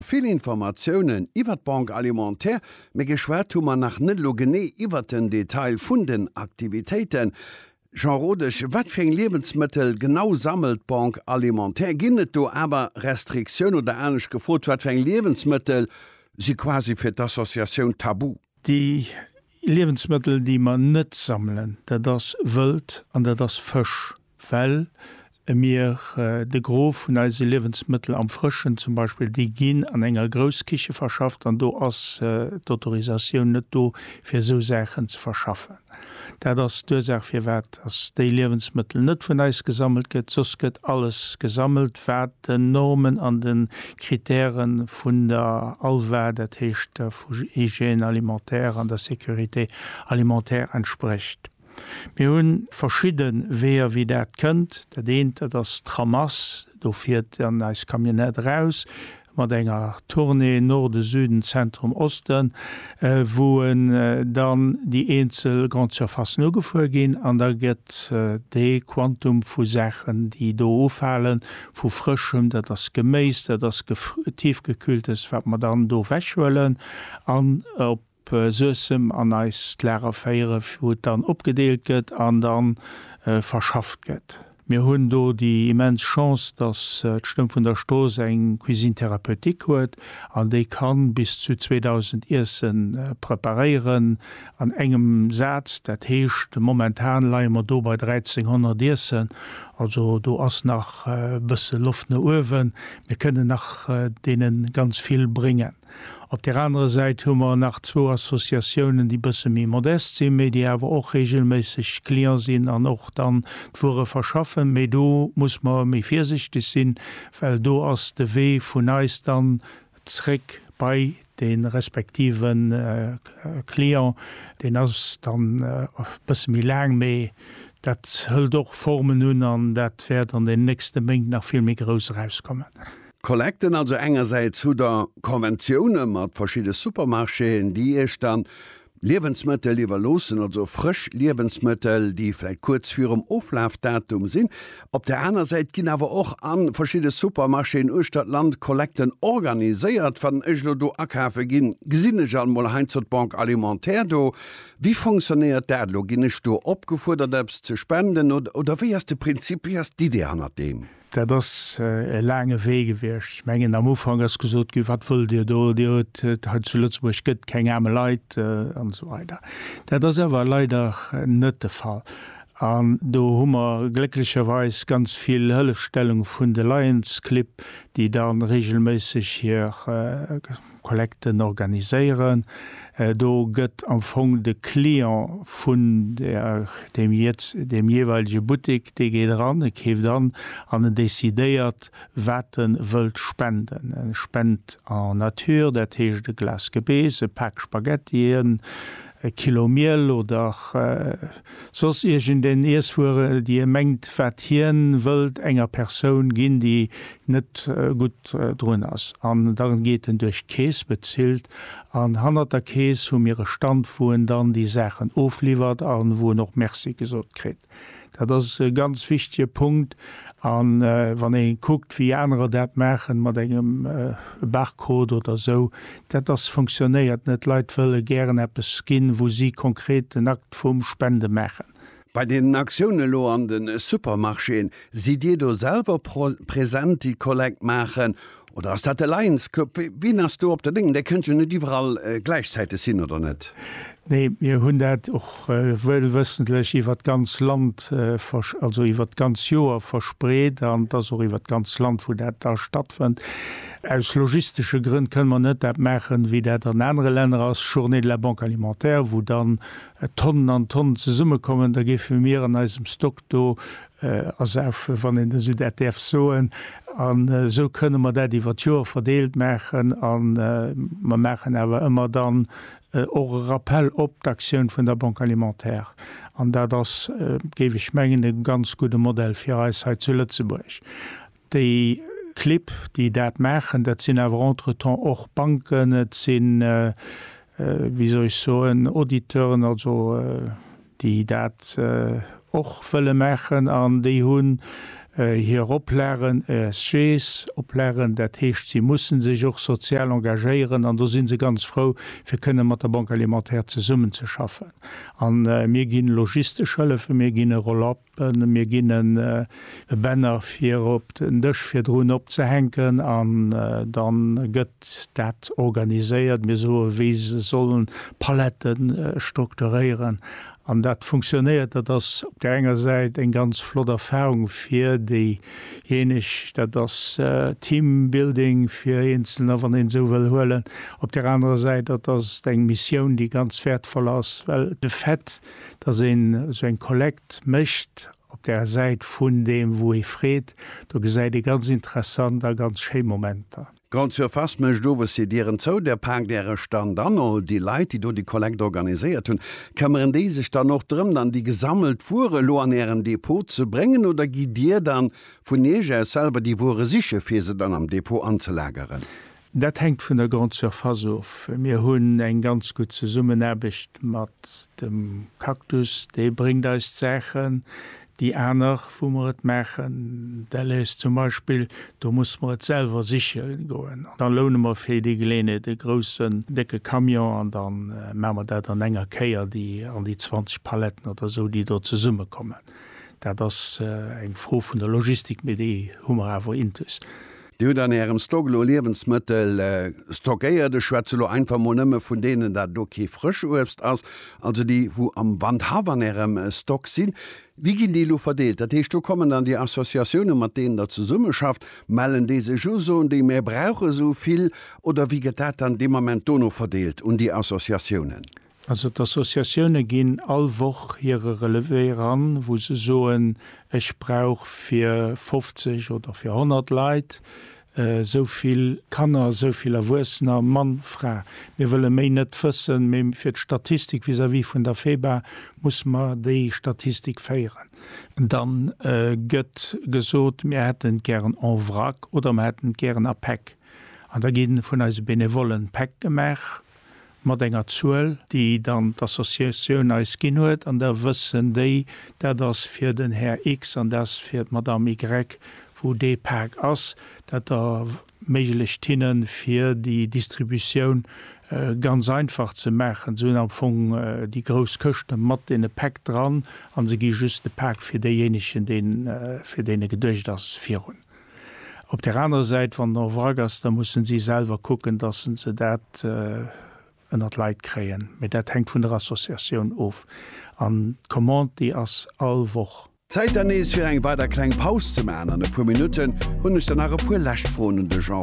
Vill Informatiounen iwwert d'Banque Alimentaire, mee geschwat hu mer nach net elo genee iwwert den Detail vun den Aktivitéiten. Jean Rodesch, wat fir eng Liewensmëttel genau sammelt d'Banque Alimentaire? Ginn et do awer Restriktioun oder anescht gefrot, wat fir eng Liewensmëttel si quasi fir d'Associatioun tabu? Déi Liewensmëttel, déi mer net sammelen, dat ass Wëld an dat ass Fësch, well mir de Gros vun eise Liewensmëttel am Frëschen zum Beispill, déi ginn an enger Grousskiche verschafft an do ass d'Autorisatioun net do, fir esou Saachen ze verschaffen. Dat ass d'Ursaach firwat dass déi Liewensmëttel net vun eis gesammelt gëtt, soss gëtt alles gesammelt wat den Normen an de Kritäre vun der ALVA, dat heescht der vu Hygiène alimentaire an der Sécurité alimentaire entsprecht. Mir hu verschidde Weeër wéi dat kënnt. Dat eent dat ass d'Ramasse, do fiert dann eis Camionnette eraus, mat enger Tournée Norden, Süden, Zentrum, Osten, wou dann déi eenzel Grandes Surfacen ugefuer ginn an da gëtt dee Quantum vu Saachen, déi do ufalen, vu Frëschem, dat ass Geméis, dat ass Tiefgekühltes, wat mer dann do ewechhuelen an op Suessem an eis d'Lager féiere wou et dann opgedeelt gëtt an da verschafft gëtt. Mir hunn do déi immens Chance, datt d'Stëmm vun der Strooss eng Cuisine thérapeutique huet an déi ka bis zu 2.000 Iesse preparéieren an engem Saz. Dat heescht momentan leie mer do bei 1.300 Iessen, also do ass nach e bësse Loft no uewen. Mir kënnen nach deene ganz vill bréngen. Op där anerer Säit hu mer nach zwou Associatiounen, déi bësse méi modest sinn, mee déi awer och reegelméisseg Client sinn an och dann d'Wuere verschaffen. Mee do muss mer méi virsichteg sinn, well do ass de Wee vun eis dann zréck bei de respektive Client, deen ass dann e bësse méi laang, mee dat hëlt och Formen un an dat wäert an den nächste Méint nach vill méi grouss erauskommen. Collecten, also engersäits hutt der Conventioune mat verschidde Supermarchéen, déi iech dann Liewensmëttel iwwerloossen, also frësch Liewensmëttel, déi vläit kuerz virum Oflafdatum sinn. Op der aner Säit ginn awer och a verschidde Supermarchéen uechter d'Land Collecten organiséiert. Wann ech elo do akafe ginn, gesinn ech alt mol heiansdo d'Banque alimentaire do. Wéi fonctionnéiert dat elo? Ginn ech do opgefuerdert eppes ze spenden oder wéi ass de Prinzip, wéi ass d'Idee hannert deem? Dat ass e laange Wee gewiescht. Ech mengen, am Ufank ass gesot ginn, Wat wëllt Dir do? Dir huet et hei zu Lëtzebuerg gëtt keng aarme Leit an esou weider. Dat ass awer leider net de Fall. An do hu mer glécklecherweis ganz vill Hëllefstellung vun de Lions Clibb, déi da reegelméisseg hir, Collecten organiséieren. Do gëtt am Fong de Client vun deem jeeweilige Buttek, dee geet eran, e keeft an an en decidéiert, wat e wëllt spenden. E spent en nature, dat heescht e Glas Gebeess, e Pak Spaghettien, e Kilo Miel oder soss iergendeng Iesswuere, déi e mengt, wat hien wëllt enger Persoun ginn, déi net gutt drun ass an dann geet en duerch d'Kees, bezilt an hannert der Kees hu mir e Stand wou en dann déi Saachen ofliwwert an wou en och Merci gesot kritt. Dat ass e ganz wichtege Punkt an wann ee kuckt wéi anerer dat maachen mat engem Barcode oder esou, dat ass funktionéiert net. D'Leit wëlle gären eppes ginn wou si konkret den Akt vum Spende maachen. Bei deenen Aktioune elo an de Supermarchéen, sidd Dir do selwer present, déi Kollekt maachen oder ass dat de Lions Club? Wien ass do op der Léngt? Där kënnt jo net iwwerall gläichzäiteg sinn, oder net? Nee, mir hunn dat och wëllwëssentlech iwwert d'ganz Land, also iwwert d'ganz Joer verspreet an et ass och iwwert d'ganz Land, wou dat da stattfënnt. Aus logistesche Grënn kënne mer net dat maachen, wéi dat an anere Länner ass, Journée de la Banque alimentaire, wou dann Tonnen an Tonnen zesummekommen, da géife mir an eisem Stock do ersaufen, wann een esou dat däerf soen. An esou kënne mer dat iwwer d'Joer verdeelt maachen. A mer maachen awer ëmmer dann och e Rappell op d'Aktioun vun der Banque alimentaire. An dat ass, géif ech mengen, e ganz gudde Modell fir eis hei zu Lëtzebuerg. Déi Clibb, déi dat maachen, dat sinn awer entretemps och Banken, et si wéi soll ech soen Auditeuren, also déi dat och wëlle maachen an déi hunn hir Oplagen, ESGs Oplagen, dat heescht si musse sech och sozial engagéieren an do si se ganz frou fir kënne mat der Banque alimentaire zesummenzeschaffen. A mir gi logistesche Hëllefen, mir ginn e Roll-up. Mir ginn e Banner fir op den Dësch virdrun opzehänken an da gëtt dat organiséiert. Mir soe wéi se sollen d'Palette strukturéieren an dat funktionéiert. Dat ass op där enger Säit eng ganz flott Erfahrung fir déijéineg. Dat ass Teambuilding fir Eenzelner, wann een esou wëll huelen. Op där anerer Säit, dat ass eng Missioun, déi ganz wäertvoll ass, well de Fait, dass een esou eng Kollekt mécht op der Säit vun deem wou ee freet, do gesäit ee ganz interessant a ganz schéi Momenter. Grande Surface mécht owes hir Dieren zou, Dir paakt Äre Stand an all déi Leit déi do déi Kollekt organiséiert hunn, këmmeren déi sech dann och drëm dann déi gesammelt Wuere elo an Ären Depot ze bréngen oder gitt Dir dann vun Iech aus selwer déi Wuere siche fir se dann am Depot anzelageren? Dat hänkt vun der Grande Surface of. Mir hunn eng ganz gutt Zesummenaarbecht mat dem Cactus, dee bréngt eis d'Saachen, déi aner, wou mer et maachen, Delhaize zum Beispill, do musse mer et selwer siche goen. An da loune mer fir déi Geleeënheet e groussen, décke Camion an da maache mer dat an enger Kéier, déi an déi 20 Paletten oder esou, déi do zesummekommen. Dat ass eng Fro vun der Logistik, mee déi hu mer awer intus. Dir hutt an Ärem Stock elo Liewensmëttel stockéiert, ech schwätze lo einfach mol nëmme vun deenen, dat do kee Frëschuebst ass, also déi wou am Wandhaff an Ärem Stock sinn. Wéi ginn déi elo verdeelt? Dat heescht, do kommen dann déi Associatiounen, mat deenen Der zesummeschafft, mellen déi sech u, soen déi, mär brauche sou vill? Oder wéi gëtt dat dann dee Moment dono verdeelt un déi Associatiounen? Also d'Associatioune ginn all Woch hire Relevé eran, wou se soen, ech brauch fir 50 oder fir 100 Leit esou vill Kanner, esou vill Erwuessener, Mann, Fra. Mir wëlle méi net wëssen, mee fir d'Statistik vis-à-vis vun der FEBA musse mer déi Statistik féieren. Dann gëtt gesot, mir hätten et gären en vrac oder mer hätten et gären a Päck. An da gi vun eise Benevollen Päck gemaach. mat enger Zuel, déi dann d'Associatioun eis ginn huet, an da wëssen déi, dat ass fir den Här X an dat ass fir d'Madame Y, wou dee Pak ass, dat erméiglecht hinnen, fir déi Distributioun ganz einfach ze maachen. Se hunn am Fong déi grouss Këschte mat deene Päck dran a se gi just de Pak fir deejéinegen, dee fir deen e geduecht ass, virun. Op där anerer Säit, wann en en Wrack ass, da mussen si selwer kucken, dass se se dat ënnert d'Leit kréien. Mee dat hänkt vun der Associatioun of. An d'Commande, déi ass all Woch. Zäit dann nees fir eng weider kleng Paus ze maachen. An e puer Minutten hunn ech dann nach e puer lescht Froen un de Jean.